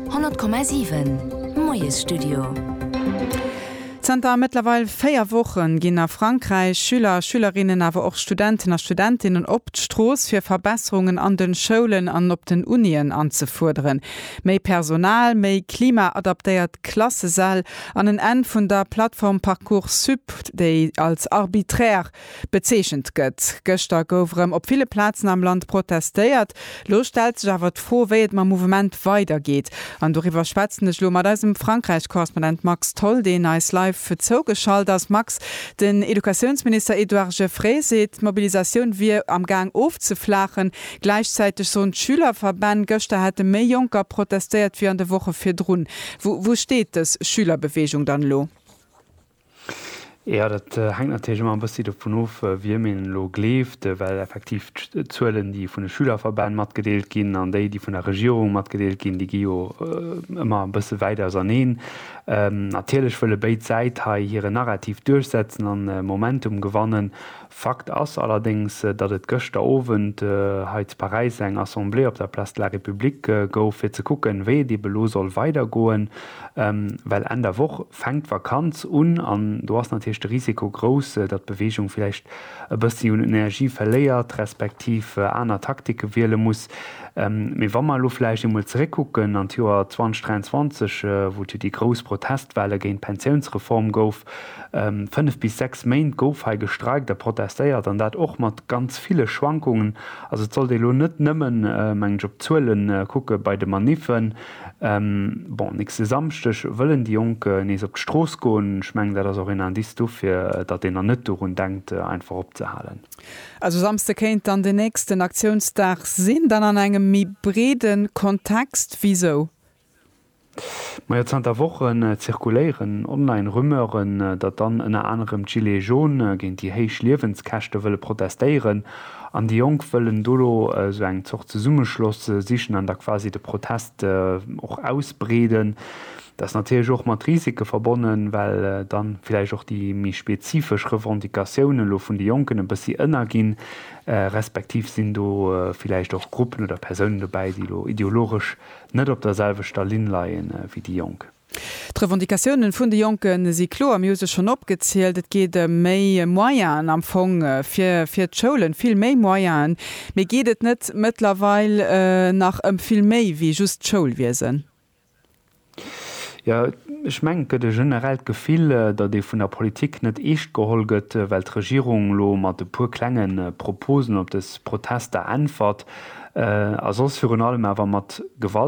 100,7 Moiesstudio. Zanter mëttlerweil véier Woche ginn a Frankräich Schüler a Schülerinnen, awer och Studenten a Studentinnen op d'Strooss, fir Verbesserungen an de Schoulen an op den Unien anzefuerderen. Méi Personal, méi klimaadaptéiert Klassesäll an en Enn vun der Plattform Parcoursup, déi als arbiträr Bezeechent gëtt. Gëschter gouf erëm op ville Plazen am Land protestéiert. Lo stellt sech awer d'Fro, wéi et mam Mouvement weidergeet. An doriwwer schwätzen ech lo mat eisem Frankräich-Korrespondent Max Tholl, deen eis live zougeschalt ass. Max, den Educatiounsminister Edouard Geffray seet, d'Mobilisatioun wier am Gaang ofzeflaachen. Gläichzäiteg soen d'Schülerverbänn, gëschter hätte méi Jonker protestéiert wéi an de Woche virdrun. Wou steet dës Schülerbeweegung dann elo? Jo, dat hänkt natierlech ëmmer e bëssi dovun of, wiem een elo gleeft, well effektiv d'Zuelen, déi vun de Schülerverbänn matgedeelt ginn, an déi, déi vun der Regierung matgedeelt ginn, déi gi jo ëmmer e bësse wäit auserneen. Natierlech wëlle béid Säit hei hire Narrativ duerchsetzen an Momentum gewannen. Fakt ass allerdéngs, datt et gëschter Owend hei zu Paräis eng Assemblée op der Place de la République gouf, fir ze kucken, wéi et eben elo soll weidergoen, well Enn der Woch fänkt d'Vakanz un an do ass natierlech de Risiko grouss, datt d'Beweegung vläicht e bëssi un Energie verléiert, respektiv aner Taktike wiele muss. Mee wa mer elo vläicht eemol zeréckkucken an d'Joer 2023, wou et jo déi grouss Protestwelle géint d'Pensiounsreform gouf, Fënnef bis sechs Méint gouf hei gestreikt a protestéiert, an dat och mat ganz ville Schwankungen. Also et sollt ee lo net nëmmen, mengen ech, op d'Zuele kucke bei de Maniffen. Bon, nächste Samschdeg wëllen déi Jonk nees op d'Strooss goen. Ech mengen, dat ass och een Indice dofir, datt een dann net dorun denkt, einfach opzehalen. Also Samsde kéint dann den nächsten Aktiounsdag sinn, dann an engem méi breede Kontext. Wisou? Majo, zanter Wochen zirkuléieren online Rumeuren, datt dann ënner anerem d'Gilets jaunes géint déi héich Liewenskäschte wëlle protestéieren. An déi Jonk wëllen dono esou eng Zort Zesummeschloss sichen an da quasi de Protest och ausbreeden. Dat ass natierlech och mat Risike verbonnen, well dann villäicht och déi méi spezifesch Revendicatioune lo vun de Jonken e bëssi ënner ginn, respektiv sinn do villäicht och Gruppen oder Persounen dobäi, déi lo ideologesch Net op der selwechter Linn leie wéi déi Jonk. D'Revendicatiounen vun de Jonke si kloer. Mir hu se schonn opgezielt. Et geet ëm méi Moyenen am Fong fir d'Schoulen, vill méi Moyenen. Mee geet et net mëttlerweil nach ëm vill méi wéi just d'Schoulwiesen? Jo, ech mengen, et gëtt e generellt Gefill, datt ee vun der Politik net eescht geholl gëtt, well d'Regierung elo mat e puer klenge Proposen op dës Protester äntwert, a soss virun allem awer mat Gewalt